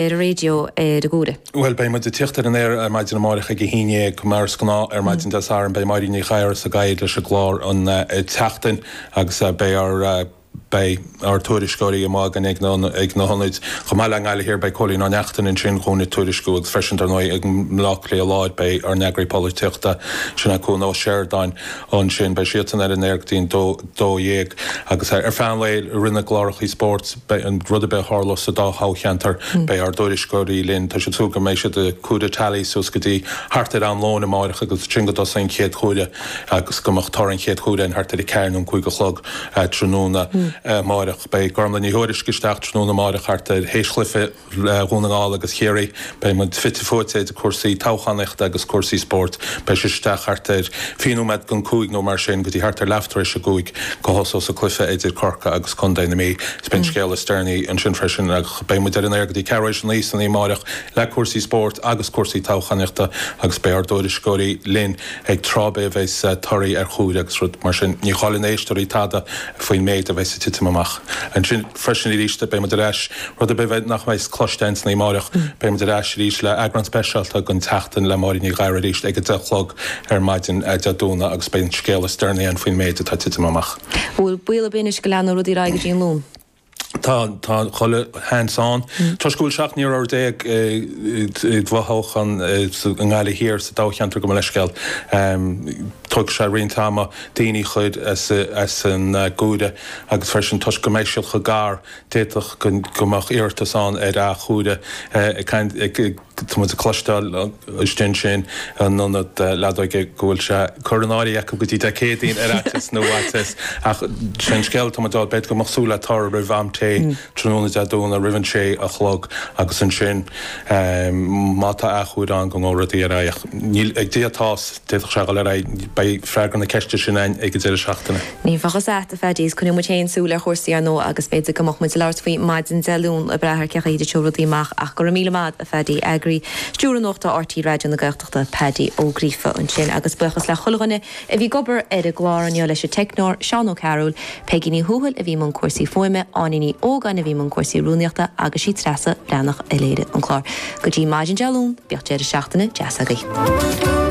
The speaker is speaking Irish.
ar an raidió ar an gcomhaireamh. Bhuel, beidh muid ag tiocht ar an aer maidin amáireach ag a haon dhéag mar is gnáth ar maidin Dé Sathairn. Beidh Máirín Ní Ghadhra sa gcathaoir leis an gclár an tseachtain agus beidh ár beidh ár tuairisceoirí amuigh againn ag na ag na hionaid chomh maith. I nGaillimh Thiar beidh Cóilín Ó Neachtain ansin dhúinn ag tuairisciú agus freisin dar ndóigh ag an mBleá Cliath Láir beidh ár n-eagraí polaitíochta sin é Cuan Ó Seireadáin ansin. Beidh siadsan ar an aer go dtí an dó 12 agus ar feadh an lae i rith na gclárachaí spóirt beidh rud ar bith a tharlós sa dá thoghcheantar beidh ár dtuairisceoirí linn. Tá siad ag súil go mbeidh siad ag comhaireamh teailí suas go dtí thart ar am lóin amáireach agus ansin go dtosóidh an chéad chomhaireamh agus go mbeadh toradh an chéad chomhaireamh linn thart ar a ceathair nó an cúig a chlog tráthnóna amáireach. Beidh Gormlaith Ní Thuairisg isteach tráthnóna amáireach thart ar théis chluiche Dhún na nGall agus Chiarraí. Beidh muid fite fuaite idir cúrsaí toghchánaíochta agus cúrsaí spóirt. Beidh sí isteach thart ar fiche nóiméad don cúig nó mar sin go dtí thart ar leathuair théis a cúig go thosós an cluiche idir Corcaigh agus Contae na Mí. Is beidh an scéal is deireanaí ansin freisin ach beidh muid ar an aer go dtí ceathrú théis a naoi san oíche amáireach le cúrsaí spóirt agus cúrsaí toghchánaíochta agus beidh ár dtuairisceoirí linn ag tráth ar bith a bheas torthaí ar chomhaireamh agus rud mar sin. Ní chailleann éisteoirí tada faoin méid a bheas ag titim amach ansin. freisin arís beidh muid ar ais, rud ar bith nach mbeidh cloiste againn san oíche amáireach beidh muid ar ais arís le eagrán speisialta den tSeachtain le Máirín Ní Ghadhra arís ag a deich a chlog ar maidin Dé Domhnaigh agus beidh an scéal is deireanaí ann faoin méid atá ag titim amach. An bhfuil baol ar bith anois go leanfaidh rudaí ar aghaidh go dtí an Luan? Tá, tá chuile sheans ann. Toisc go bhfuil seacht n-iarrthóir déag i bhfothoghchán i nGaillimh Thiar sa toghcheantar gabh mo leithscéal, tógfaidh sé roinnt ama daoine a chur as an gcomhaireamh. agus freisin toisc go mbeidh siad chomh gar, d'fhéadfadh go mbeadh iarratas ann ar athchomhaireamh. Ag caint, tá muid ag cloisteáil istigh ansin in ionad leadóige go bhfuil sé curtha in áirithe acu go dtí Dé Céadaoin ar fhaitíos na bhfaitíos, ach sin scéal atá muid ag fáil, b'fhéidir go mbeadh súil le toradh roimh am tae. tráthnóna Dé Domhnaigh roimh an sé a chlog agus ansin má tá athchomhaireamh ann go ngabhfaidh rudaí ar aghaidh. Níl ag Dia atá a fhios, d'fhéadfadh sé dhul ar aghaidh. Beidh freagra na ceiste sin againn ag an deireadh seachtaine. Ní bheadh a fhios a'at a Phaddy, is coinneoidh muid féin súil ar chúrsaí ar ndóigh agus b'fhéidir go mbeadh muid ag labhairt faoi maidin Dé Luain ag brath ar cé chaoi a dtitfidh rudaí amach ach go raibh míle maith a'd a Phaddy, Eagraí Stiúrtha Nuachta RTÉ Raidió na Gaeltachta, Paddy Ó Gríofa ansin agus buíochas le chuile dhuine a bhí ag obair ar an gclár inniu leis an teicneoir Seán Ó Cearúil, Peigí Ní Thuathail a bhí i mbun cúrsaí fuaime, Áine Ní Ógáin a bhí i mbun cúrsaí rúnaíochta agus sí Treasa Bhreathnach a léirigh an clár. Go dtí maidin Dé Luain, bíodh deireadh seachtaine deas agaibh.